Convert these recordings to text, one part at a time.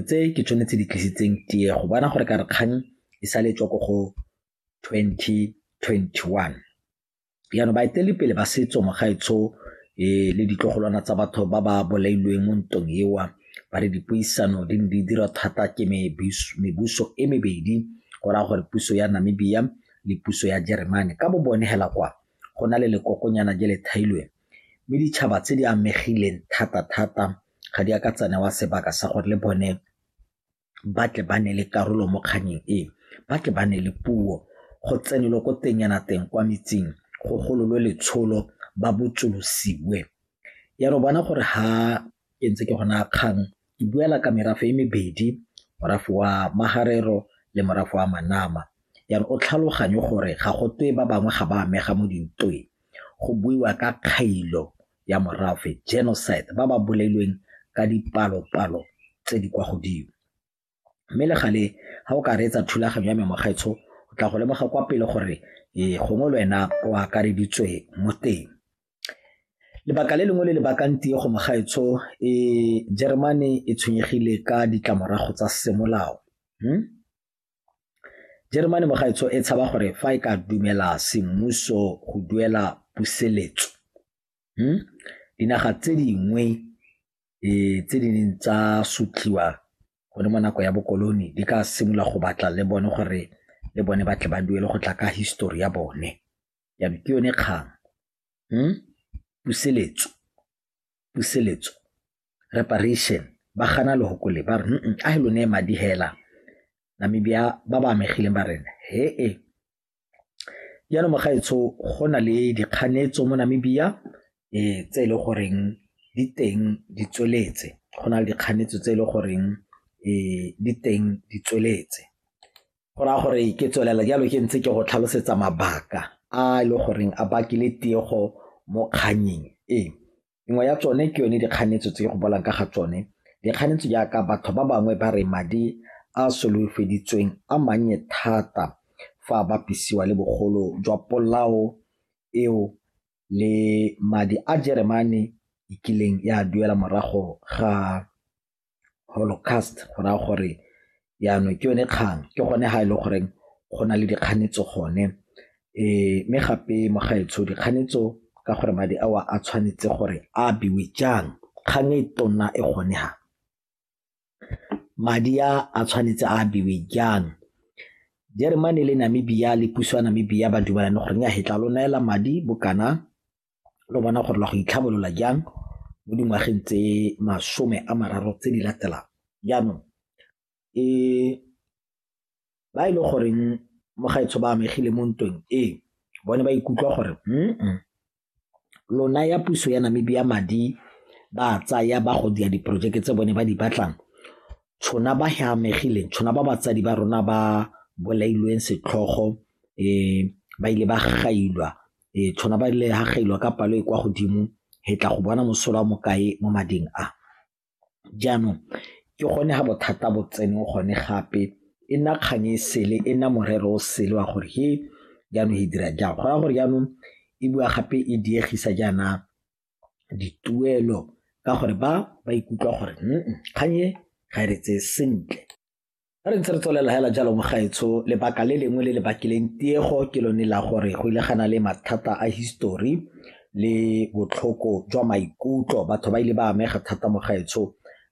tse ke tsone tse di tlisitseng tiego bona gore ka re kgang e sa le tswa ko go 2021 jaanong baetelepele ba setso mogaetsho um e, le ditlogolwana tsa batho ba ba bolailweng mo ntong ewa ba re dipuisano di ne di dira thata ke mebuso e mebedi go raya gore puso ya namibia le puso ya jeremane ka bo bone hela kwa go na le lekokonyana je le thailweng mme ditšhaba tse di amegileng thata-thata ga di a ka tsa newa sebaka sa gore le bone ba tle ba ne le karolo mo kganyeng e ba tle ba ne le puo go tsenelwe ko teng yana teng kwa metsing go gololwe letsholo ba botsolosiwe ya re bona gore ha ke ntse ke gona kgang ke buela ka merafe e mebedi morafe wa magarero le morafe wa manama ya re o tlhaloganye gore ga go twe ba bangwe ga ba amega mo dintweng go buiwa ka kgailo ya morafe, genocide, ba ba bolailweng ka dipalo-palo tse di kwa godimo. Mme le gale ga o ka reetsa thulaganyo ya me mogaetsho o tla go lemoga kwa pele gore ee gongwe le wena o akareditswe mo teng. Lebaka le lengwe le le bakang tiego mogaetsho e Jeremane e tshwenyegile ka ditlamorago tsa semolao. Hmm? Jeremane mogaetsho e tshaba gore fa e ka dumela semmuso go duela puseletso hmm? dinaga tse dingwe e, tse di neng tsa sutliwa gone mo nako ya bokoloni di ka simolola go batla le bone gore le bone ba tle ba duele go tla ka histori ya bone ya ke yone kgang hmm? puseletso puseletso reparation ba gana lehokole ba re a he lo ne madi hela namibia ba ba amegileng ba rena he e jaanong mogaetsho go na le dikganetso mo namibia um tse e le goreng di teng di tsweletse go na le dikganetso tse e le goreng um di teng di tsweletse go raya gore ke tswelela jalo ke ntse ke go tlhalosetsa mabaka a e le goreng a bakile tiego mo kganyeng e nngwe ya tsone ke yone dikganetso tse go bolang ka ga tsone dikganetso jaaka batho ba bangwe ba re madi a solofeditsweng a mannye thata fa a bapisiwa le bogolo jwa polao eo le madi a jeremane e kileng ya duela morago ga holocaust go raya gore yanong ke yone kgang ke gone ga e le goreng go na le dikganetso gone um mme gape mo gaetsho dikganetso ka gore madi ao a tshwanetse gore a abiwe jang kgang e tona e gone ha madi a a tshwanetse a abiwe jang jeremane le namibia le puso ya namibia ba dumalane goreng ya hetla lo neela madi bokana lo bona gore la go itlhabolola jang mo dingwageng tse masome a mararo tse di latelang jaanong e ba e le goreng mo gaetsho ba amegile mo ntweng ee bone ba ikutlwa gore mm lona ya puso ya namibia madi ba tsaya ba go dia diporojeke tse bone ba di batlang tshona ba he amegileng tshona ba batsadi ba rona ba bolailweng setlhogo um ba ile ba gailwa e tshwana ba le hagailwa ka palo e kwa godimo he tla go bona mosola wa mokae mo mading a jaanong ke gone ga bothata bo tsene gone gape e nna kgang e sele e nna morero o sele wa gore he jaanong e dira jang go ya gore jaanong e bua gape e diegisa jaana dituelo ka gore ba ba ikutlwa gore kgang e ga e re tseye sentle Fa re ntse re tswelela hela jalo mogaetsho lebaka le lengwe le le bakileng tiego ke lone la gore go ile gana le mathata a history le botlhoko jwa maikutlo batho ba ile ba amega thata mogaetsho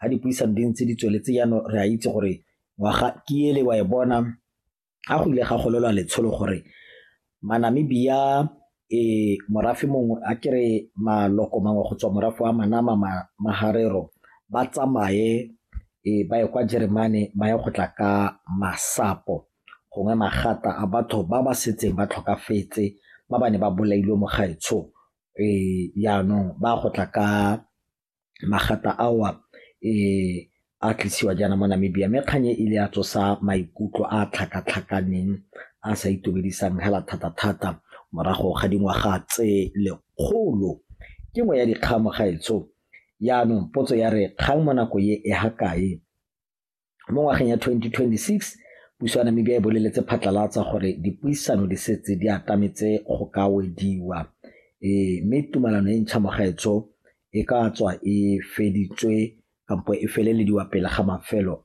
ga dipuisano di ntse di tsweletse jaanong re a itse gore ngwaga ke ele wa e bona ga go ile ga golelwa letsholo gore Manamibia e morafe mongwe a kere maloko mangwe go tswa morafe wa Manama ma, Maharero ba tsamaye e ba ye kwa Jeremane ba ye go tla ka masapo gongwe magata a batho ba ba setseng ba tlhokafetse ba ba ne ba bolailwe mo gaetsho e jaanong ba go tla ka magata ao a tlisiwa jaana mo Namibia. Mme kgang e ile ya tsosa maikutlo a tlhakatlhakaneng a sa itumedisang hela thata-thata morago ga dingwaga tse lekgolo. Ke nngwe ya dikgang mo gaetsho. Jaanong potso ya re kgang mo nako e e ha kae Mo ngwageng ya 2026, puso ya Namibia e boleletse phatlalatsa gore dipuisano di setse di atametse go ka wediwa e, mme tumalano e ntšha mo gaetsho e ka tswa e feditswe kampo e felelediwa pele ga mafelo